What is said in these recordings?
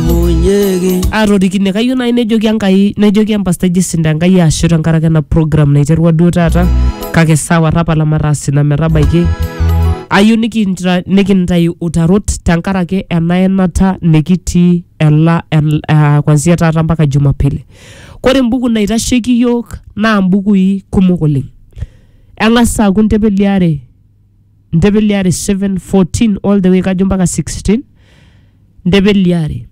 munyeki atorikine kayieu naaji nejoki enkai nejoki empastai jisinda enkai ashu tenkaraki ena program naiterua duo taata kake sawa tapala mataas ina metabaiki ayieu nikintra- nikintayu utarot tenkaraki ena enata nikitii ela el- ah, kwanzia taata mpaka jumapili kore embuku naitasheki yiok naa mbukui kumok oleng eng'as aaku ntepeliare ndebeliare 7 14 all the way kajo mpaka 16 ndebeliare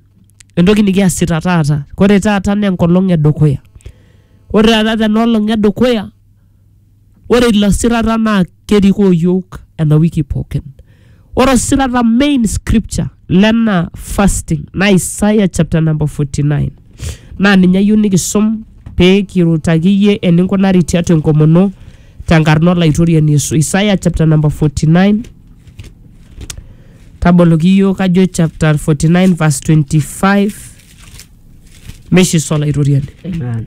entoki nikiasita taata kore taata naa enkolong edukuya ore taata tena olong edukuya ore ilo sirata naa kerikoo yiok ena wiki pookin ore osirata main scripture lena fasting na Isaiah chapter number 49 naa ninye ayieu nikisum pee kirutaki iyie eninkunari tiatua enkomono tenkarna olaitoriani Yesu. Isaiah chapter number 49 taboloki iyiook kajo chapter 49 verse 25 meishiso olaitoriani. Amen.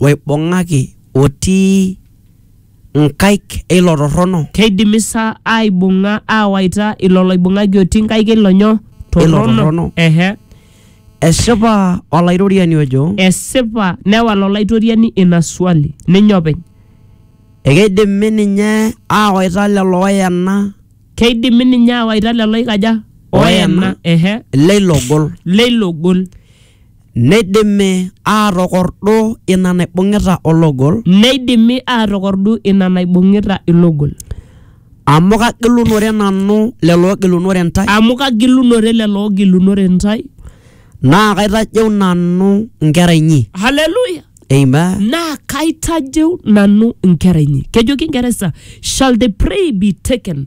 oibung'aki otii nkaik e ilo torrono. Keidimi sa aaibung'a aawaita ilo loibung'aki otii nkaik e ilo nyo? E ilo torrono. Ehe. Esipa Olaitoriani ojo. Esipa, newal Olaitoriani ina swali ninye openy. Ekeidimi ninye aawaita lelo ooyena. Keidimi ninye aawaita lelo oikaja? Ooyena. Ehe. Leilo gol. Leilo gol. Neidimi aatokordu ina naibung'ita ologol. Neidimi aatokordu ina naibung'ita ilogol. Amu kagilunore nanu lelo oogilunore intae. Amu kagilunore lelo oogilunore intae. Naa kaitajeu nanu nkera inyi. Haleluya! Amen. Naa kaitajeu nanu nkera inyi. Kejoki Ingeresa, shall the prey be taken?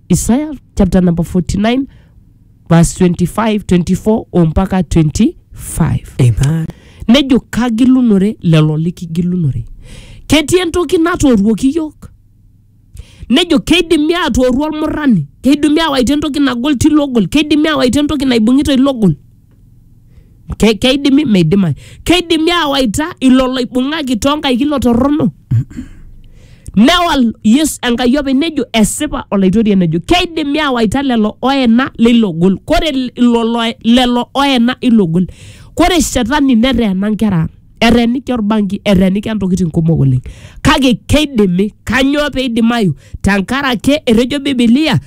isaya chapter number 49 verse 25 24 ompaka 25 Amen. nejo kagilunore lelo likigilunore ketii entoki natooruoki iyiok nejo keidimi atooru olmurrani keidimi awaita entoki nagol tilo ogol keidimi awaita entoki naibung'ita ilo ogol Ke- keidimi meidimayu keidimi aawaita ilo loibung'aki toonkaik ilo torrono newal yesu enkai openy nejo esipa olaitoriani nejo keidimi aawaita lelo oena leilo gol kore ilo lo- lelo oena ilo gol kore shetani neteena nkera ang eteeniki orbanki eteeniki ntokitin kumok oleng kake keidimi kanyoo peidimayu tenkarake etejo bibilia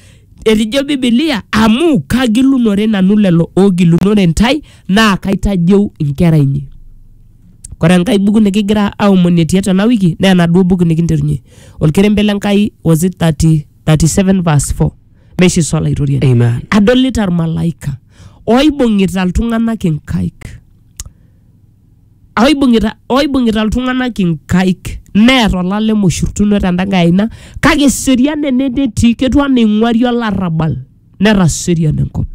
Etejo Bibilia, Amu kagilunore nanu lelo oogilunore ntae, naa kaitajeu nkera inyi. Kore enkae buku nikigira aomonie tiatua ena wiki naa enaduo buku nikinterunye olkerembe le Nkai was it 30, 37 verse 4 meishiso Olaitoriani. Amen. Adolita ilmalaika oibung'ita iltung'anak inkaik. oibung'ita oibung'ita iltung'anak inkaik neer olalem oshurtuno tenda nkae aina kake eserian ene netii ketiu anaa eing'uari olarrabal netaserian enkop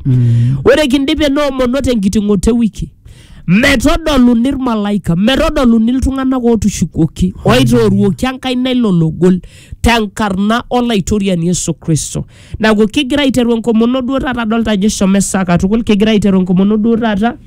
ore kindip enoomono tenkiting'oto ewiki metodoluni irmalaika metodoluni iltung'anak ootushukuoki oitooruoki enkaina ilo logol tenkarna olaitoriani Yesu Kristo neeku kigira aiteru enkomono duo taata adolta ajo eshomo esaa katukul kigira aiteru enkomono duo taata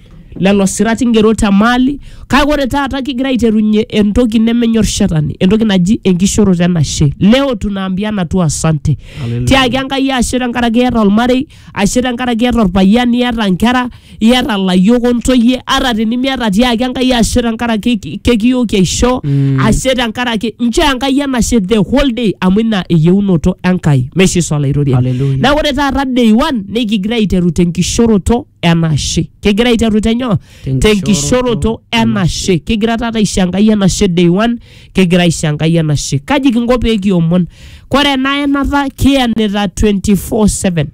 lelo sirat ingero te maali kake ore taata kigira aiterunye entoki nemenyor shetani entoki naji enkishoroto enashe leo tunaambiana tu asante Hallelujah. tiaki enkai ashe tenkaraki iyata olmarei ashe tenkaraki iyata orpayian iyata nkera iyata layiok ontoyie ata tenimiata tiaki enkai ashe tenkaraki ki- kekiyooki aisho Mm. ashe tenkaraki nchoo enkai enashe the whole day amu ina eyieunoto enkai meshiso olaitoriani Hallelujah. na ore taata day one nikigira aiteru tenkishoroto enashe kegira aiteru tenyoo tenkishoroto enashe kegira taata aisho enkai enashe day one kegira aisho enkai enashe kaji kinko pee kiomon kore ena enata kiyenita 24/7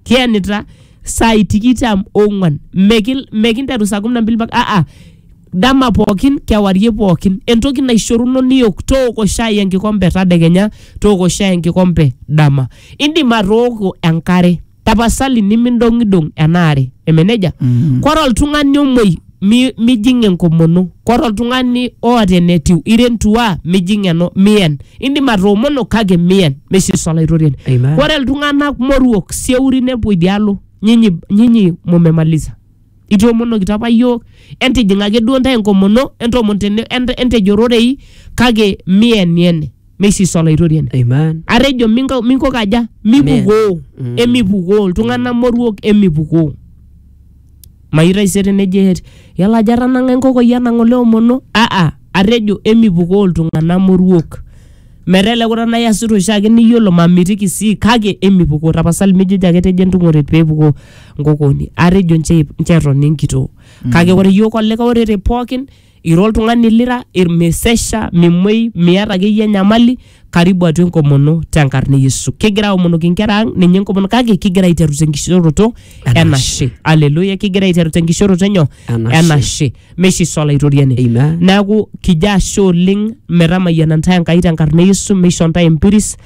kiyenita saai tikitam ong'uan Mekil- mekinteru saa kumi na mbili mpaka aa dama pookin kewarie pookin entoki naishoruno niyok tooko shai enkikompe tadekenya tooko shai enkikompe dama indim atooko enkare tapasali nimindong'idong ena are eme nejia Mm. kore oltung'ani omoi mi- mijing enkomono kore oltung'ani oota enetiu irentua mijing eno miyen indim atoomono kake miyen mesiusu olaitoriani Amen. kore iltung'anak moruok sieuri nepuo idialo nyinyi, nyinyi mumemaliza itoomonokito apa iyiook entijing ake duo ntae enkomono entoomon tene ent- entejo rorei kake mieniene meisisa olaitoriani Amen. atejo minko minko kaja mipukoo Mm. emipukoo iltung'anak moruok emipukoo mayieu taisere nejo ehet yala ajo atanang'a enkokoi anang' ole omono aa atejo emipukoo iltung'anak moruok metaa ele kuta naa iasita oshiake niyiolo mamitiki sii kake emipukoo tapasali mijojo ake etejo entung'ore peepukoo nkokoni atejo nche nche etoni enkitoo kake ore yiok olikae orere pookin ira oltung'ani lira irmesesha mimuei miata akeyie enyamali karibu atua enkomono tenkarna e Yesu. Kigira aomonoki inkera ang ninye enkomono kake kigira aiteru tenkishoroto Enashe. enashe. Aleluya, kigira aiteru tenkishoroto enyo Enashe. enashe. Meishiso olaitoriani. Amen. Neaku kijo ashe oleng metamayiana ntae Enkai tenkarna e Yesu, meisho ntae empiris.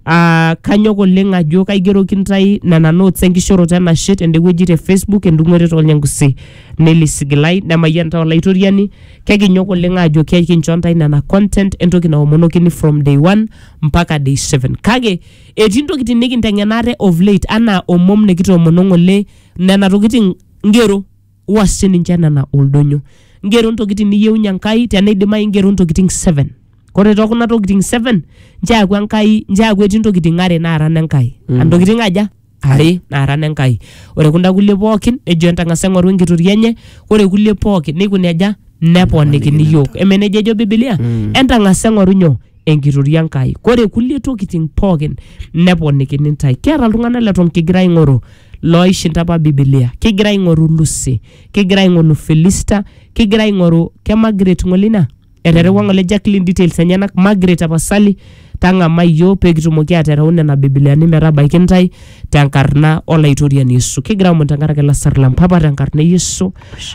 Ah, kanyok oleng ajo kaigeroki ntae nena notes enkishoroto enashe tende wueji te Facebook endung'oret olnyangusi Nelly Sigilai nemayian ntae olaitoriani kekinyok oleng aajo kekincho ntae nena content entoki naomonokini from day one mpaka day seven kake etii ntokitin nikinteng'ena ate of late anaa omom nikitoomono ng'ole nena tokitin ngero wua sininche nena oldonyo ngero ntokitin niyieunyie enkai teneidimayu ngero ntokitin seven kore tokuna tokitin seven nchoo eaku enkai nchoo eaku etii ntokitin are naara nenkai mm. antokitin aja are naara nenkai ore kunda kulie pookin nejo entang'asa eng'oru enkitoria enye ore kulie pookin neikuni aja neponikini yiok eme nejia ejo bibilia Mm. entang'asa eng'oru nyoo enkitoria enkai kore kulie tokitin pookin neponikini ntae kiata iltung'anak leton kigira aing'oru looishinda apa bibilia kigira aing'oru lusi kigira aing'oru filista kigira aing'oru ke Margaret ng'ole ina eterewua ng'ole Jacqueline details enyenak Margaret tapasali tang'amai iyiok pee kitumoki atereu nena bibiliani metabaiki intae tenkarna olaitoriani Yesu kigira aomon tenkaraki lasar lang papa tenkarna e Yesu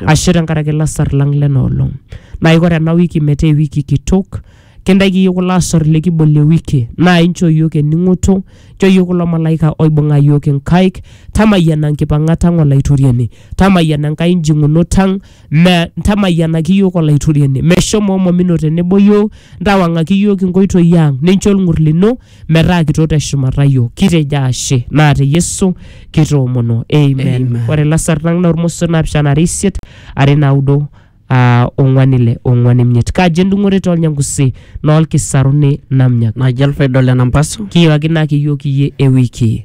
ashe tenkaraki lasar lang lena olong naa iko tena wiki metaa ewiki kitok kintaiki iyiok kulo asor likibolie wiki naa inchoo iyiok ening'oto inchoo iyiok kulo malaika oibung'a iyiok inkaik tamayiana nkipang'at ang olaitoriani tamayiana enkai njing'unot ang Me, ntamayianaki iyiook Olaitoriani, meshomo omomino tenebo iyiook, ntawang'aki iyiook inkoitoi ang, nincho olng'ur lino metaa kitok te shumata iyiook. Kitejo ashe, naa te Yesu kitoomono. Amen. Amen. Ore ilasar lang naa ormosor naapishana are isiet, are naudo, aa ong'wan ile, ong'wan imiet. Kaji endung'ore too Lnyangusi, noo Lkisaruni namnyak. Naji Alfred Ole Nampasu. Kiyiakinaki iyiook iyie ewiki.